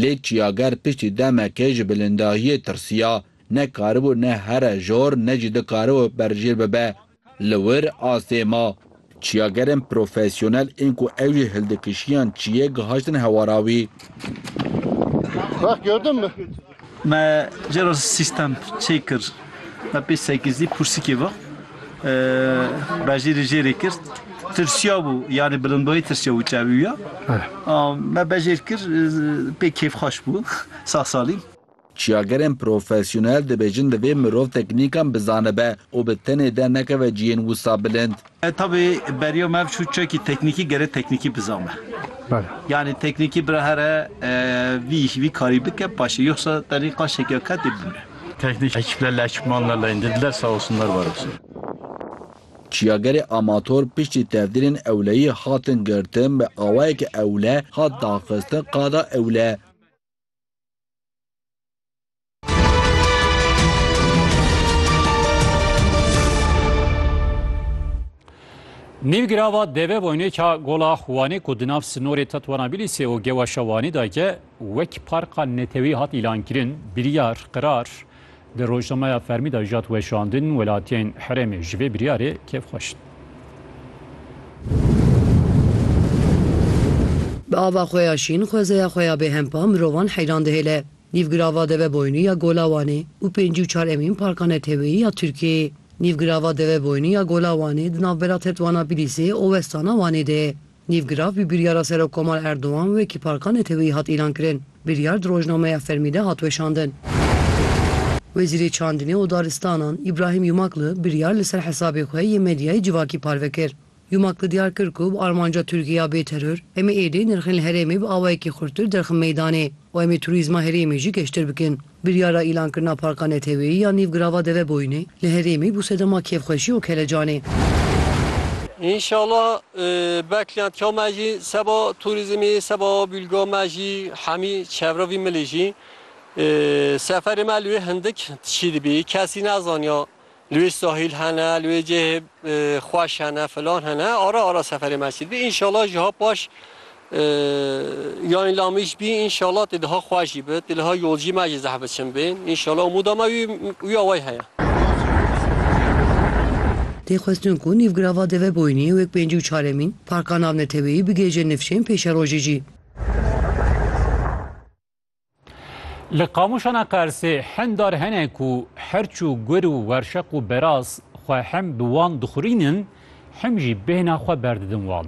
Lê çiyager piştî demekê ji bilindahiyê tirsiya. Ne karibû ne here jor ne jî dikaribû berjêr bibe. Li wir astê ma. Çiyagerên profesyonel ên ku ew jî hildikişiyan çiyê gihaştin hewara wî. Me cera sîstem çê kir, me pê sekîzdî pûrsikê ve bejê rê jê rê kir. Tirsiya bû, yanî bilindbûyî tirsiya bû çeviya. Me bejê rê kir, pê kêfxweş bû, sağ salîm. Çiyagerên profesyonel dibêjin divê mirov teknîkan bizanibe û bi tenê dernekeve cihên wisa bilind. Tabî beriya me ev çû çekî teknîkî gere teknîkî bizane. Yanî teknîkî bira here vî îş vî karî bike paşê yoxsa tenê qaşekî ya ketê bimre. Teknîk ekîpler li ekîpman re leyndê dide sağ olsunlar var olsun. Çiyagerê Amator piştî tevdîrên ewleyî hatin girtin bi awayeke ewle hat daxistin qada ewle. Nîvgirava deve boynê ka gola Xwanê ku di nav sinorê Tetwanabilîsê û Gewaşa Wanî de ye wek parka netewî hat îlankirin, biryar, qirar di rojnameya fermî de jat weşandin, welatiyên herêmê ji vê biryarê kêfxweş in. Bi ava xwe ya şîn, xwezeya xwe ya bêhempa mirovan heyran dihêle. Nîvgirava Deveboynû ya Gola Wanê û pêncî û çar emîn Parka Neteweyî ya Tirkiyeyê. Nîvgirava Deveboynû ya Gola Wanê di navbera Tetwana Bilîsê û westana Wanê de ye. Nîvgirav bi biryara Serokkomar Erdogan wekî Parka Neteweyî hat îlankirin. Biryar di rojnameya fermî de hat weşandin. Wezîrê Çandinê û Daristanan Îbrahîm Yumakli biryar li ser hesabê xwe yê medyayê civakî parve kir. Yumak li diyar kir ku bi armanca Tirkiyê ya bê teror, em ê êdî nirxên li herêmê bi awayekî xurttir derxin meydanê û em ê turîzma herêmê jî geştir bikin. Biryara îlankirina parka neteweyî ya nîv girava Deveboyînê li herêmê bû sedema kêfxweşî û kelecanê. Înşala beklentiya me jî seba turîzmê, seba bîlga me jî hemî çevra vî milê jî seferê me li wê hindik tişî dibî. Kesî nezaniya li wê sahîl hene, li wê cihê xweş hene, filan hene, ara ara seferê me sîr bî. Înşala jiha paş yanî lamîş bî, înşala tê diha xweş jî bi, tê diha yolcî me jî zeh biçin bê. Înşala umûda me wî wî awayî heye. Tê xwestin ku nîvgirava Deveboyînê wek pêncî û çaremîn parka navneteweyî bigihêje nifşên pêşerojê jî. Li qamûşana Qersê hindar hene ku herçû gur û werşeq û beraz xwe hem bi wan dixurînin hem jî bêhna xwe berdidin wan.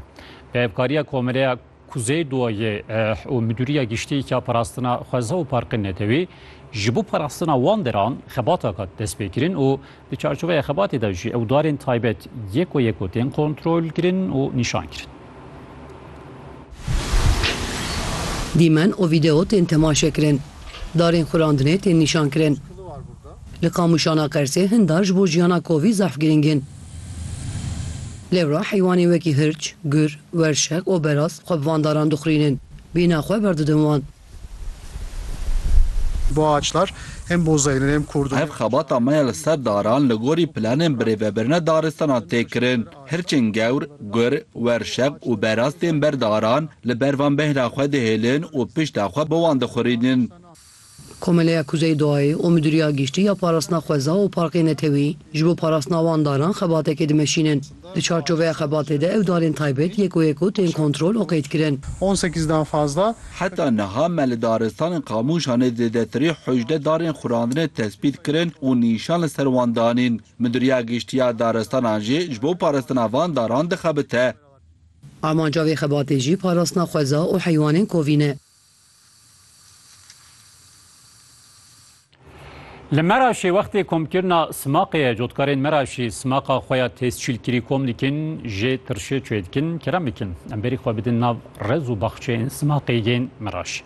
Bi hevkariya Komireya Kuzey Duayê û Midûriya Giştî ya Parastina Xweza û Parqên Netewî ji bo parastina wan deran xebataka destpêkirin û Di çarçoveya xebatê de jî ewdarên taybet yeko yeko tên kontrolkirin û nîşankirin. Dîmen û vîdeo tên temaşekirin. Darên xurandinê tên nîşankirin. Li Qamûşana Qersê hin dar ji bo jiyana kovî zehf girîng in. Lêwra heywanên wekî hirç, gur, werşeq û beraz xwe bi van daran dixurînin. Bîna xwe berdidin wan. Ev xebata me ya li ser daran li gorî planên birêvebirina daristanan tê kirin. Hirçên gewr, gur, werşeq û beraz tên ber daran, li ber van bêhna xwe dihêlin û pişta xwe bi wan dixurînin. Komeleya Kuzey Doğayê û Midûriya Giştî ya Parastina Xweza û Parkê Netewî ji bo parastina wan daran xebatekê dimeşînin. Di çarçoveya xebatê de ew darên taybet yek û yek û tên kontrol û qeydkirin. Heta niha me li daristanên Qamûşanê zêdetirî hojde darên xurandinê tespît kirin û nîşan li ser wan danîn. Midûriya Giştî ya Daristanan jî ji bo parastina van daran dixebite. Amanca vê xebatê jî parastina xweza û heywanên kovîn e. Li Meraşê wextê komkirina Simaqê ye, cotkarên Meraşê simaqa xwe ya têzçîlkirî kom dikin, jê tirşê çê dikin, kerem bikin em berî xwe bidin nav rez û baxçeyên simaqê yên Meraşê.